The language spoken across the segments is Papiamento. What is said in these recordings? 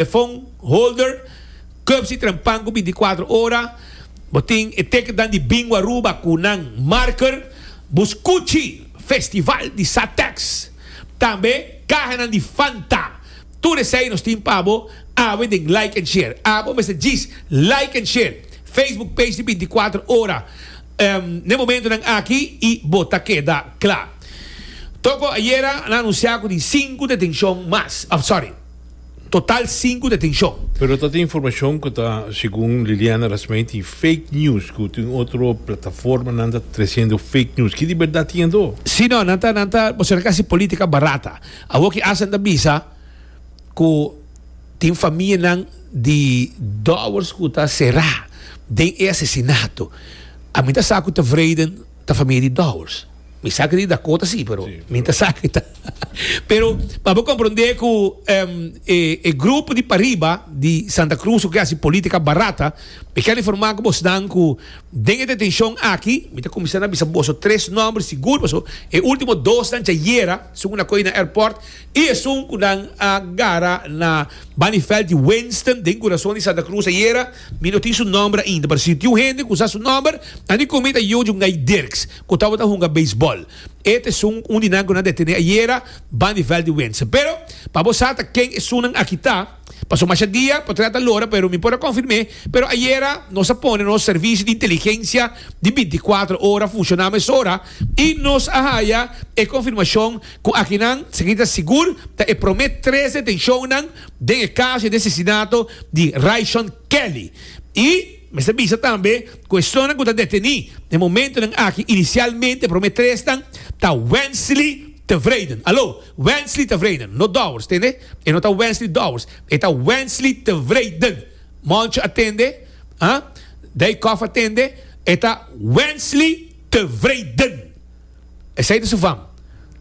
E fon holder, cups y trempan cu binticuatro ora. Bo tin e tekenan di Bingo Aruba cu nan marker. Bo scuchi Festival di Satex. Tambe cahanan di Fanta. Tur esey nos tin pa bo awe den Like and Share. Abo mester djis Like and Share Facebook page di Binticuatro Ora n'e momentonan aki y bo ta keda cla. Toco ayera a anuncia cu tin sinku detencion mas. Sorry. Total sinku detenshon. Pero ta tin informashon ku ta, segun Liliana Rasmey, tin fake news, ku tin otro plataformanan ta tresiendo fake news. Ki di bèrdat tin ando? Sí, no, nan ta, nan ta, bo serka hasi polítika barata. Awor ki ASEAN ta bisa ku tin famianan di dòwers ku ta será den e asesinato. Ami ta sa ku Tevreden ta famia di dòwers. Mi sa di Dakota si, pero sí, mi ta sa ta. pero pa bo comprende ku um, e, e grupo di pariba di Santa Cruz ke hasi política barata, mi kan informa ku bos dan ku den e detención aki, mi ta comienza na bisa boso tres nombres sigur, paso e último dos dan chayera, sun na koi na airport, y e sun ku dan a gara na Banifeld di Winston den corazón di Santa Cruz ayera, mi no tin su nombre ainda, pero si tin un hende ku sa su nombre, ani ku mi ta yo Jungai Dirks. cu tabata hunga beisbol. E ta esun un di nan cu nan ta e tene ayera, Bundy Veldy Winson. Pero, pa bo sa ta ken esunnan aki ta, paso masha dia, por trata lora, pero mi por a confirme, pero ayera nos a pone nos servicio di inteligencia di binti cuatro ora funciona mesora y nos a haya e confirmacion cu akinan seguí ta sigur ta e prome tres detencionnan den e caso di asesinato di Ryshon Kelly y Mester bisa tambe cu esonnan cu ta deteni den momentonan aki inicialmente prome tresnan ta Wensley Tevreden. Alo, Wensley Tevreden, no Dowers, tende? E no ta Wensley Dowers, e ta Wensley Tevreden. Moncho a tende, ah, Daycoff a tende, e ta Wensley Tevreden. Esei ta su fam.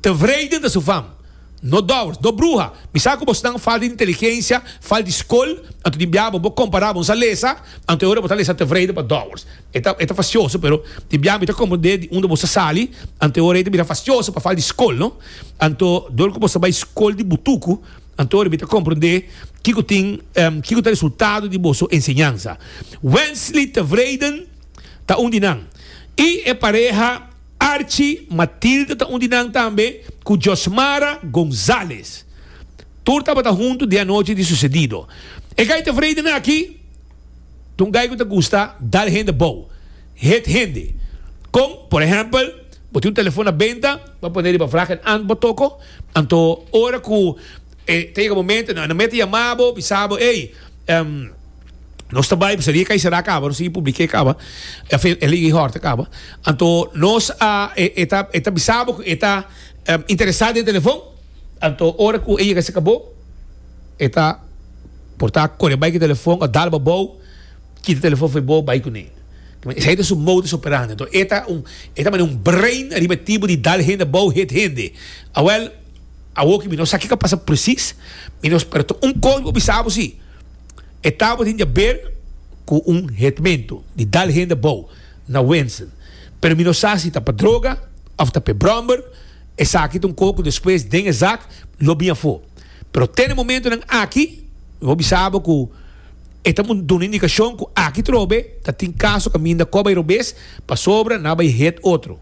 Tevreden ta su fam. No dowers, no bruha. Mi sa ku bosnan falta di inteligensia, falta di skol, anto di bia bo bo kompará bo sa lesa, anto e ora bo ta lesa tevreden pa dowers. E ta e ta fasioso, pero di bia mi ta komprendé di unda bo sa sali, anto e ora ei ta bira fasioso pa falta di skol, no? Anto dor ku bo sa bai skol di butuku, anto e ora mi ta komprendé kiko tin kiko ta resultado di boso enseñansa. Wensley tevreden ta un di nan i e pareha. Archi Matilda ta un di nan tambe cu Josmara Gonzalez. Tur tabata hunto di anochi di sucedido. E gai ta vrede na aki. Ta un gai cu ta gusta dal hende bou, heet hende. Con, por ehempel, bo tin un telefon na benta, bo a pone riba vraag en ant bo toco, anto ora cu e ta yega momento en nan mete yama bo, bisa bo, ey, Nos ta bai, pasobra e kaiserá a kaba, nos sigui publiké kaba, afen, e liga i hòrta kaba. Anto nos a, e, e ta, e ta bisa bo ku e ta interesá den telefòn, anto ora ku e yega serka bo, e ta por ta kore bai ku e telefòn, òf dal bo abou, kita e telefòn for bo, bai kuné. Esei ta su modus operandi. Anto e ta un, e ta manera un brein ariba e tibu di dal hende abou, hit hende. Awèl, awo ku mi no sa ke ka pasa presis, mi no spera. Tò, un kos mi por bisa bo sí. E tabo tin diaber cu un hetmento di dal hende bou na Wensen, pero mi no sa si ta pa droga of ta p'e bromber, esaki ta un coho cu despues den e zak lo bin afo. Pero ten e momentonan aki mi por bisabo cu e ta por duna indicacion cu aki trobe ta tin caso caminda coba e robes pasobra nan a bay het otro.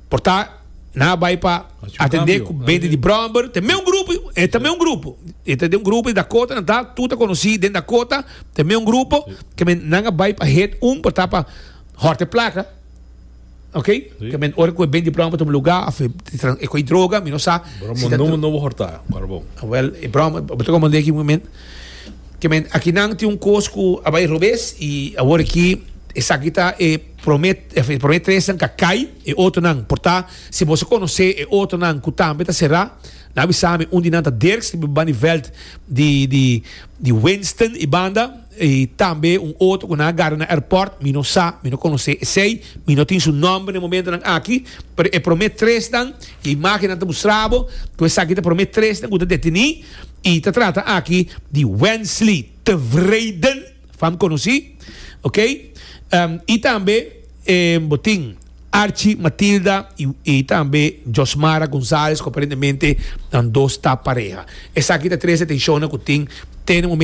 por ta nan a bai pa atende ku bende di bromber te meun grupo e ta meun grupo e ta den un grupo di dakota nan ta tur ta konosi den dakota te meun grupo ke men nan a bai pa head un por ta pa hòrte plaka oke ke men ora ku e bende di bromber ta un luga of e e kohe droga mi no sa si ta droga no bo hòrta para bo wèl e bromber bo ta komandé aki un moment ke men aki nan tin un kos ku a bai robes i awor aki esaki ta e Prome e prome tres nan ka kai, e otro nan por ta. Si boso konosé e otro nan ku tambe ta será, nan avisa mi. Un di nan ta Dirks di Bybaan di Veld di di di Winston i banda, i tambe un otro ku nan a gara na airport. Mi no sa, mi no konosé esei, mi no tin su nòmber na e momento nan aki. Pero e prome tres nan, ku e imágen nan ta mustra bo, ku esaki ta prome tres nan ku ta detiní, i ta trata aki di Wensley Tevreden. Fam conoci, ok. Y tambe bo tin Archi Matilda y tambe Josmara Gonzalez cu aparentemente nan dos ta pareha. Esaki ta tres atencionnan cu tin te na momento.